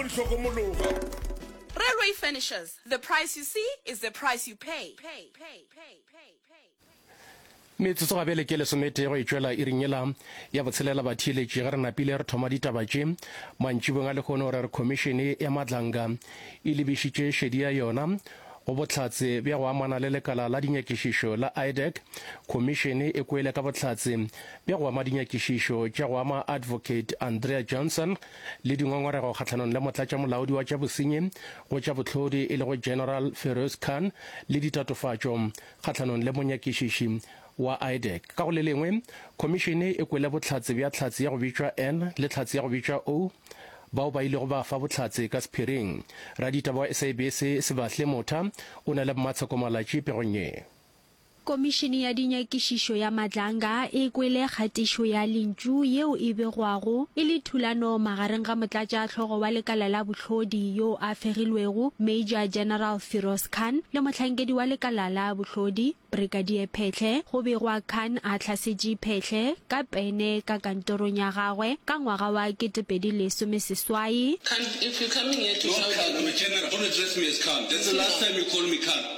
o ntlhokomologa. Railway Furnishers, the price you see is the price you pay. Metsotso ga bjale ke lesometee go e tšwela iring yela ya botshelela batheeletši ge re napile re thoma ditaba tše mantšibong a lekgono gore re khomišene ya madlanga e lebišitše šedi ya yona go bohlatse bja go amana le lekala la dinyakišišo la idec khomišene e kwele ka bohlatse bja go ama dinyakišišo tša go ama advocate andrea johnson le dingongorego kgahlanong le motlatšamolaodi wa tša bosenyi go tša bohlodi e lego General Feroz Khan le ditatofatšo kgahlanong le monyakišiši wa IDEC. Ka go le lengwe, khomišene e kwele bohlatse bja Tlhatse ya go bitšwa N le Tlhatse ya go bitšwa O bao ba ilego ba fa bohlatse ka sephiring. Raditaba wa SABC Sebahle Motha o na le mmatsheko malatši pegong ye. Komišene ya Dinyakišišo ya Madlanga e kwele kgatišo ya lentšu yeo e begwago e le thulano magareng ga motlatšahlogo wa lekala la bohlodi yo a fegilwego Major General Firoz Khan le mohlankedi wa lekala la bohlodi Brigadier Phehle go begwa Khan a hlasetše Phehle ka pene ka kantorong ya gagwe ka ngwaga wa 2018. Khan, if you coming here to shout at me. No, Khan, I'm a general. Don't address me as Khan. That's the last time you call me Khan.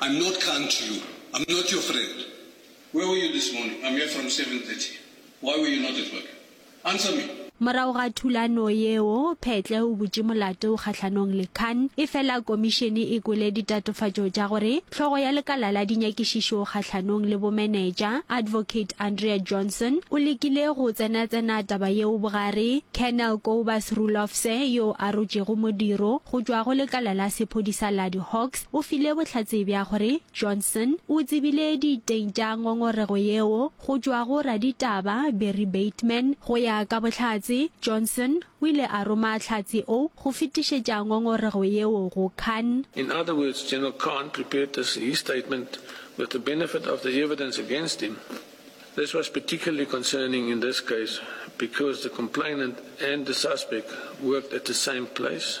I'm not kind to you, I'm not your friend, where were you this morning, I'm here from 7:30, why were you not at work, answer me. Morago ga thulano yeo, Phetle o butše molato kgahlanong le Khan, efela komišene e kwele ditatofatšo tša gore hlogo ya lekala la dinyakišišo kgahlanong le bomenetša, Advocate Andrea Johnson, o lekile go tsenatsena taba yeo bogare, Colonel Kobus Roelofse, yo a rotšego modiro go tšwa go lekala la sephodisa la di-Hawks, O file bohlatse bja gore Johnson o tsebile diteng tša ngongorego yeo go tšwa go raditaba Barry Bateman. Go ya ka bohlatse, Johnson o ile a roma hlatse o go fetišetša ngongorego yeo go Khan. In other words, General Khan prepared this his statement with the benefit of the evidence against him. This was particularly concerning in this case because the complainant and the suspect worked at the same place.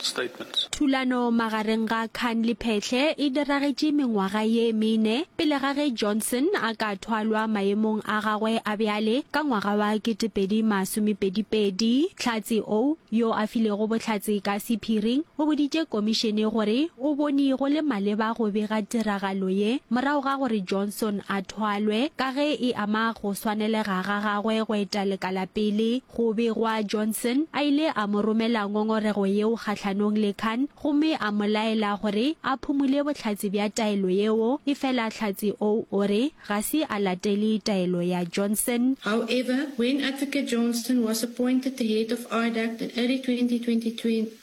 statements. Thulano magareng ga Khan le Phehle e diragetše mengwaga ye mene pele ga ge Johnson a ka thwalwa maemong a gagwe a bjale ka ngwaga wa 2022. Tlhatse o, yo a filego bohlatse ka sephiring, o boditše komišene gore o bone go le maleba go bega tiragalo ye morago ga gore Johnson a thwalwe ka ge e ama go swanelega ga gagwe go eta lekala pele. Go begwa Johnson a ile a mo romela ngongorego yeo kgahlanong le Khan gomme a mo laela gore a phumule bohlatse bja taelo yeo, efela hlatse oo o re ga se a latele taelo ya Johnson. However, when Advocate Johnston was appointed the head of IDACT in early 2022,